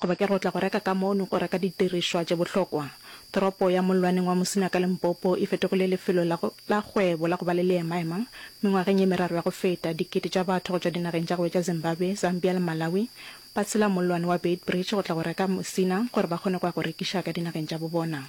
Goba ke re o tla go reka ka mo o neng o reka didirišwa tše bohlokwa. Toropo ya mollwaneng wa Musina ka Limpopo e fetogile lefelo la, la kgwebo la go ba le leemaema. Mengwageng ye meraro ya go feta, dikete tša batho go tšwa dinageng tša go etša Zimbabwe, Zambia le Malawi ba tshela mollwane wa Beitbridge go tla go reka Musina gore ba kgone go ya go rekiša ka dinageng tša bo bona.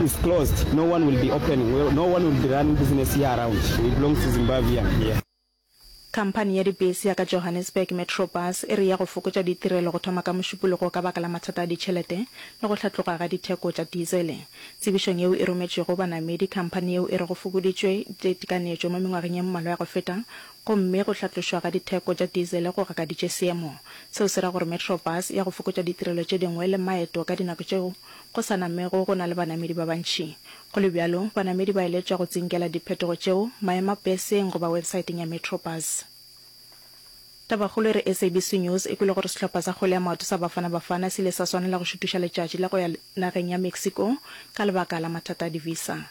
is closed no one will be opening well no one will be running business here around we belong to Zimbabwean here. Khamphani ya dibese ya ka Johannesburg Metro Bus e re ya go fokotša ditirelo go thoma ka Mošupologo ka baka la mathata a ditšhelete le go hlatloga ga ditheko tša dizele. Tsebišong yeo e rometšwe go banamedi, khamphani yeo e re go fokoditšwe ditekanetšo mo mengwageng ye mmalwa ya go feta gomme go hlatlošwa ga ditheko tša dizele go gakaditše seemo. Seo se ra gore Metro Bus ya go fokotša ditirelo tše dingwe le maeto ka dinako tšeo Go sa namego go na le banamedi ba bantši. Go le bjalo, banamedi ba eletšwa go tsinkela diphetogo tšeo maemapeseng goba websaeteng ya Metrobus. Tabakgolo e re SABC News e kwele gore sehlopha sa kgwele ya maoto sa Bafana Bafana se ile sa swanela go šutuša letšatši la go ya nageng ya Mexico ka lebaka la mathata a di-visa.